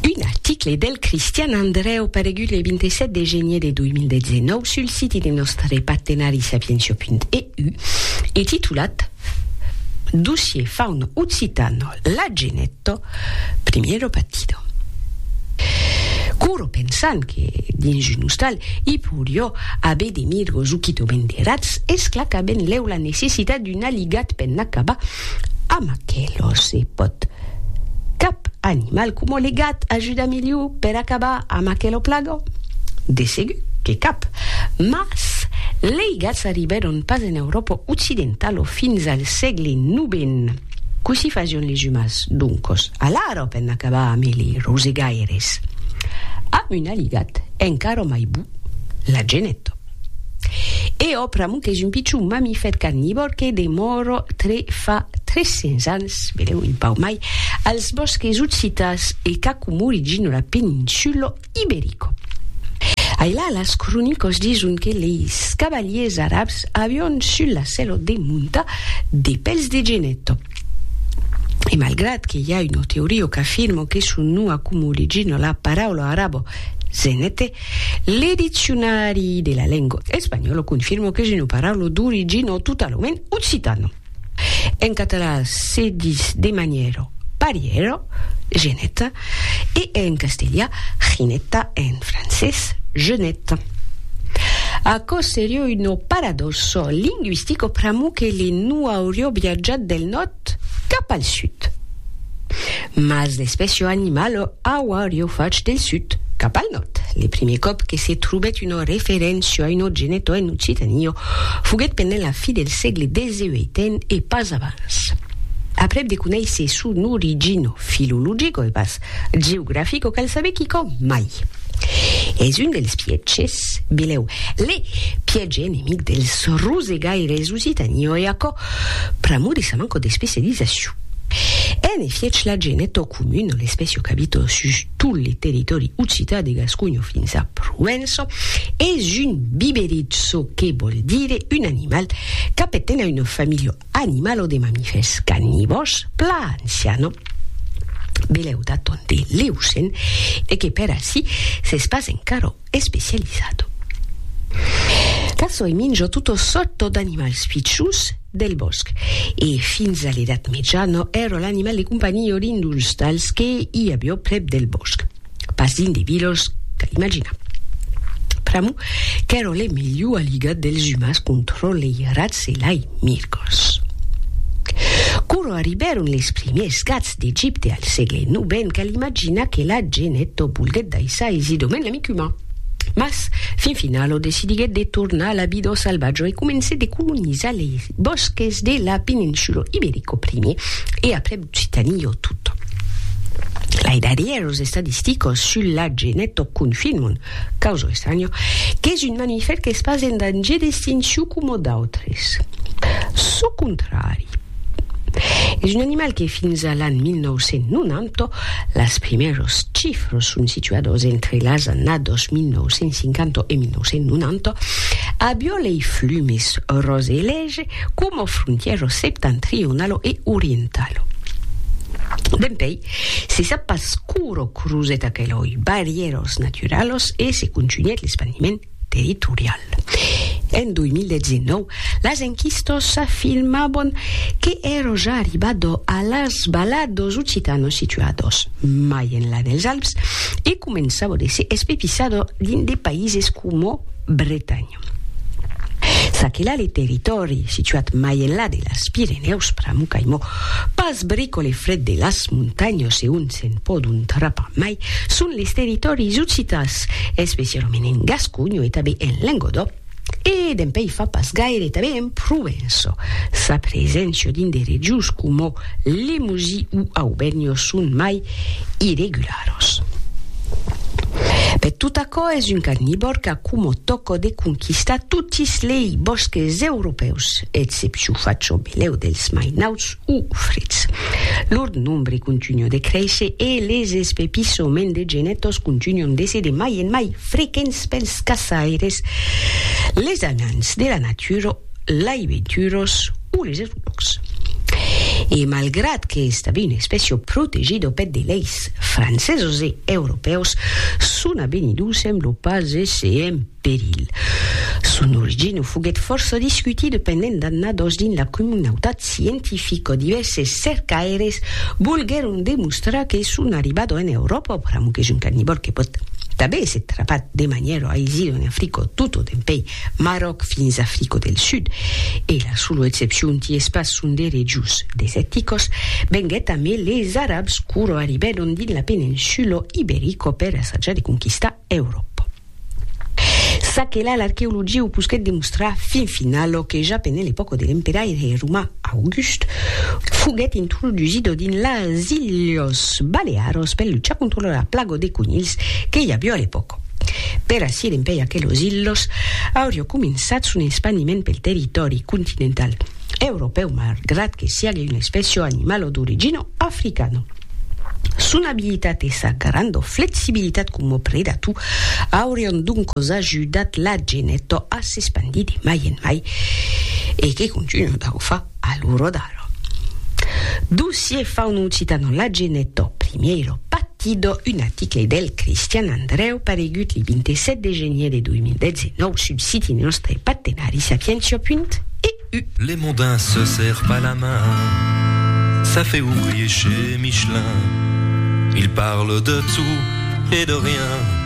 Un article del Cristian Andrèu paregut le 27 de genier de 2019 sul siti de nòstre partenari sapientia.eu e titulat Dossier fauno occitano Lageneto, primiero partido. Coro pensant que, dins un ostal, i porió aver de mirgos o quitobèn de rats, esclaca benlèu la necessitat d'un aligat per n'acabar, Amb aquelo se pòt. Cap animal coma le gat ajuda milhor per acabar amb aquela plaga? De segur que cap. Mas lei gats arribèron pas en Euròpa occidentala fins al sègle novèn. Cossí fasión les umans, doncos, alara per n'acabar amb eli rosegaires? Amb un aligat encara mai bou, la geneta. E ò pr'amor qu'es un pichon mamifèr carnivòr que demòra tre fa 300 ans, benèu un pauc mai, als bòsques occitans e qu'acomori gino la peninsula iberica. Ailà las cronicas dison que leis cavaliers arabs avián sul la sèla de montar de pèls de genet. E malgrat que i a una teoria qu'afirma que son nom acomori gino la paraula araba zenete, Le diccionari de la lengo espanhòlo confirmo qu'es una paraula d'origin o totalament occitano. En català se dis de manièra parièra, geneta, e en castelha, jineta, en francés, jeunette. Aquò seriá una paradòxa linguistica pr'amor que li no aurió viatjat del nòrd tot cap al sud. Mas l'espècio animal auario fach del sud cap al nòrd. Le primier còp que se trobèt una referéncia a un ogeneto en Occitania foguèt pendent la fi del sègle xviii e pas abans. Aprèp de conéisser son origina filologica e pas Geografic o cal saber quicòm mai. Es un dels pièges, bilhèu, le piège enemic dels rosegaires occitanioi e aquò pr'amor de sa manco d'especializacion. En efiech la gent es tot comun, l'espècia o qu'abita sus tot le territòri occitan de Gasconha fins a Provença es un biberit çò que vòl dire un animal qu'aperten a una familha Animal o de mamifèrs carnivòrs plan siano. Belèu d'aton de l'Eocèn e que per ací s'es pas encara especializado. Casoi minja tota sòrta d'animals pichons del bòsc e fins a l'Edat Mejana èra l'animal de companhiá d'un d'uns tals que i aviá prèp del bòsc. pas dins de vilos tà l'imaginar. Pr'amor qu'èron le melhor aligat dels umans contra lei rats e lai mirgos. Quora arribèron les primièrs gats d'Egipte al sègle novèn cal imaginar que la genèto volguèt daissar aisidament l'amic uman. Mas, fin finalo decidiguèt de tornar a la vida au salvatge e comencèt de colonizar lei bòsques de la peninsula iberico primier e aprèp Si tenio tot. Lai darrièr los estadisticos sul la genetto confirmon, causo estranho, qu'es un mamifèr qu'es pas en dangier d'extincion coma d'autres. Çò contrari. Es un animal que fins a l'an 1990, las primèros chifros son situados entre las annados 1950 e 1990, avió lei flumes rose e lège, coma frontièro septentrionalo e orientalo. Dempèi, se sap pas quora crosèt aqueloi barrièras naturalas e se contunhèt l'espandiment territorial. En 2019, las enquistas afirmavan que èra ja arribada a las Valadas Occitanas situadas mai enlà dels Alps e començava de se espepissada dins de païses coma Bretanha. S'aquela le territòri situat mai enlà de las Pirenèus pr'amor qu'aimò pas bric o le fred de las montanhas e ont se'n pòdon trapar mai son les territòris occitans, especialament en Gasconha e tanben en Lengodò e dempèi fa pas gaire tanben en Provença. Sa preséncia dins de regions coma Lemosie o Aubènha son mai irregular. Arròs. Bèth, tot aquò es un carnivòr qu'a coma tòca de conquistar totis lei bòsques europèus, excepcion fach au melèu dels mai nauts o freds. Lor nombre continua de créisser e les espepissoments de genetòs continuan d'èsser de mai en mai frequents pels caçaires, les anants de la natura, lei venturós o les. Lòcs. E malgrat qu'estavi un espècio protegit au pet de leis francesos e europèus, son avenidor semblo pas èsser en perilh. Son origina foguèt fòrça discutida pendent d'annadas dins la comunautat scientifica. Divèrses cercaires volguèron demostrar que son arribada en Euròpa, pr'amor qu'es un carnivòr que pòt tanben èsser trapat de manièra aisida en Africa tot o dempuèi Maròc fins Africo del Sud, e la solo excepcion ti es pas son derejos deseticos, venguèt amé les Arabs quoro arribèron dins la peninsulo Iberico per assajar de conquistar Euròpa. Ça que là l'arqueologia o posquèt demostrar fin finalo que ja pendent l'epòca de l'emperaire romà August foguèt introdusido dins las Ilhos Balearos per luchar contra la plago de conilhs que i avió a l'epòca. Per acier empèi aquelos ilhos, aurio cominçat son espandiment pel territòri continental europèu malgrat que siague una espècia o animal o d'origina africana. Son abilitat e sa granda flexibilitat coma predator aurián doncas ajudat la geneta a s'espandir de mai en mai, e que continuan de ho far. a lo rodar. Dossier faun'occitano La Genetto Primiero Pattido un article del Cristian Andreu paregut li 27 de genier de 2019 sul siti nòstre partenari sapientia.eu. Les mondains se serrent pas la main, ça fait ouvrier chez Michelin, ils parlent de tout et de rien.